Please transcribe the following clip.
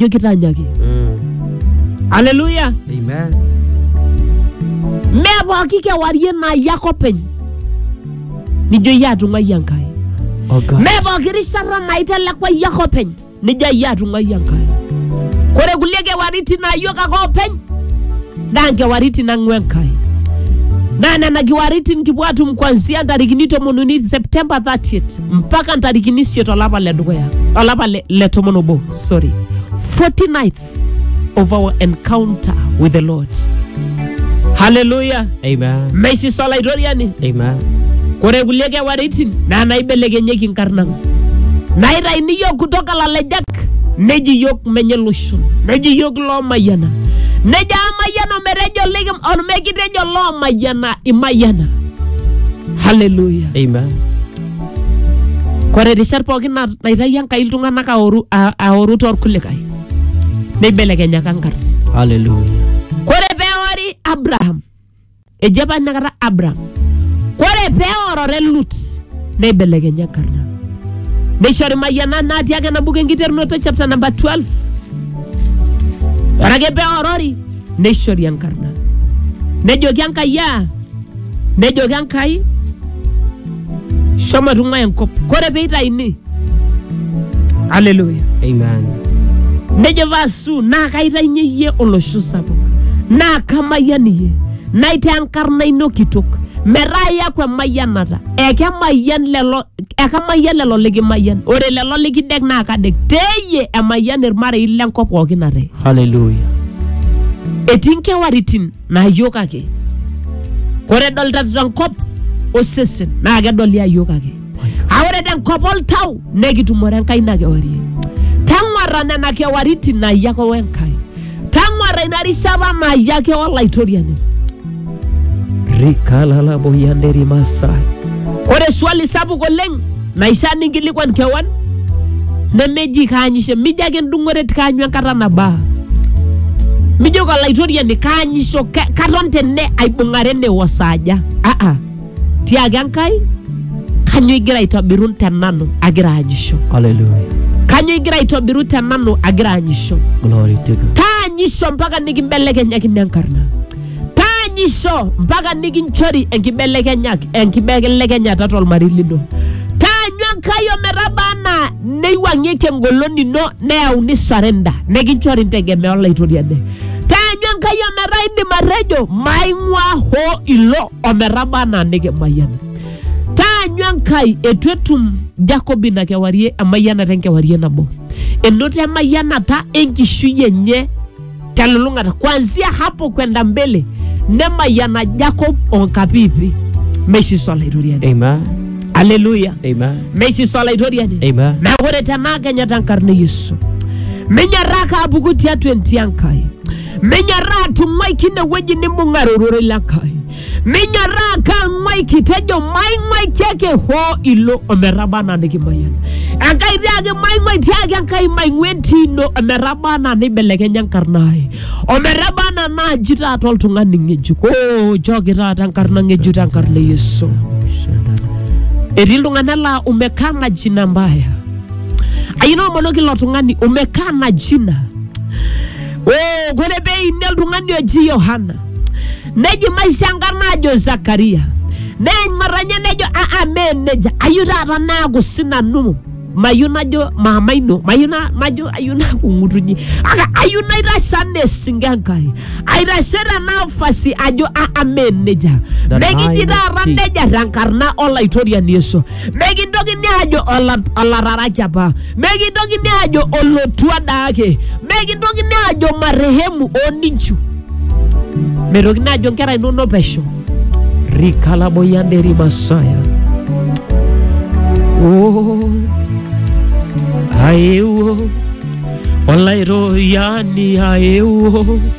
jo kitanyaki haleluya Amen. mee pooki kewarie naa iyie ake openy nijo iyie atung'ai enkai Oh God. mee pooki rishata naa itelekwa iyie ake openy nijo iyie atung'ai enkai kore kulie kewaritin naa iyiok ake openy naa nkewaritin nang'ua enkai naa nena kewaritin kipuo atum kuanzia ntarikini tomon uni septemba 30 mpaka ntarikini isiet olapa le dukuya olapa le, le tomon obo sorry, 40 nights of our encounter with the Lord. Hallelujah. Amen. Maisi sala itoriani. Amen. Kore kulie kewaritin naa naibelekenyieki nkarn ang. Naitaini yiok kutoka lalejak neji yiok menye loshon neji yiok loomayiana nejo amayiana ometejo likim omekitejo loomayiana imayiana. Hallelujah. Amen. Kore rishat pookin na- naitayio Enkai iltung'anak aoru, a- aoru torkulikae neibelekenyaka nkarn. Hallelujah. Kore peori Abraham, eji apa inakata Abraham, kore peorore Lut neibelekenya enkarna. Neishori mayianat natii ake ena buku enkiterunoto chapter number 12. Ore ake peorori neishori enkarna. Nejoki Enkai aa nejoki enkai shomo tung'ua enkop kore peitaini aleluya Amen. nejo vasu naa kaitainyie iyie olosho sapuk naa kamayian iyie naitaa enkarna ino kitok metaa iyaku emayianata ekemayian lelo ekamayian lelo likimayian ore lelo likidek naa kadek teyie emayian irmarei lenkop pookin ate Hallelujah. etii nkewaritin naa iyiok ake kore edolita tenkop osesen naa kedoli ayiok ake a ore tenkop oltau nekitumore enkai ina kewarie tang'uarra nena kewaritin naayie ake wenkai tang'uarra ina rishata naayie ake olaitoriani rikalalaboyanderimasa kore swali sapuk oleng Naishaa ninkilikuan kewan nemeji kaanyisho, mijo ake endung'ore ti kaanyu enkata nabaa. Mijoki olaitoriani kaanyisho, ka- katon tene aibung'are ene osaaja. Aa, tiaki Enkai kanyo igira aitobiru te nanu agira aanyisho? Hallelujah. Kanyo igira aitobiru te nanu agira aanyisho? Glory to God. Kaanyisho mpaka nikimbelekenyakini enkarna. taanyisho mpaka nikinchori enkibelekenyaki enkibelekenyata tolmarei lino taanyu enkai ometaba anaa neiwang'ieki engolon ino neyauni sarenda nikinchori ntegemea olaitoriani taanyu enkai ometaa indim atejo maing'uaa hoo ilo ometaba anaa nikimayiana taanyu enkai etu etum jakob ina kewarie emayianata enkewarie nabo enoto emayianata enkishui enye telulung'ata kuanzia hapo kwenda mbele nemayana jacob onkapipi meishiso olaitoriani Amen. aleluya Amen. meishiso olaitoriani Amen. neeku ore tenaa kenya tenkarna e yesu minyaraa kaapuku tiatua entii enkai minyaraa atung'uai kine wueji nimbung'are ororei le nkai minyorraa kang'wai kitejo maing'wai tiake hoo ilo ometaba anaa nikimayian enkai tiaki maing'wai tiaki enkai maing'ua entii ino ometaba anaa neibelekenya enkarna ai ometaba anaa naaji taata oltung'ani ng'ejuk oo nchooki taata enkarna ng'ejuk tenkarna e yesu etii iltung'anak laa umekaa na jina mbaya ayina omonoki ilo tung'ani umekaa na jina oo kore peini oltung'ani oji yohana neji maisha enkarna ajo zakaria neing'or enye nejo aa mee nejia ayieu taata naaku sinanu mayieu najo maama ino mayieu na- majo ayieu naaku ng'utunyi kake ayieu naitashe anaa esinke enkai aitashe tenafasi ajo aa mee nejia The mekiji nine taata feet. nejia tenkarna olaitoriani yesu mekintokini ajo ola- olararaki apa mekintokini ajo olotua daake mekintokini ajo marehemu oninchu metokini ajo nkera inonok pesho rikalaboyanderi masaya oh, aewuo olaitoyani aewuo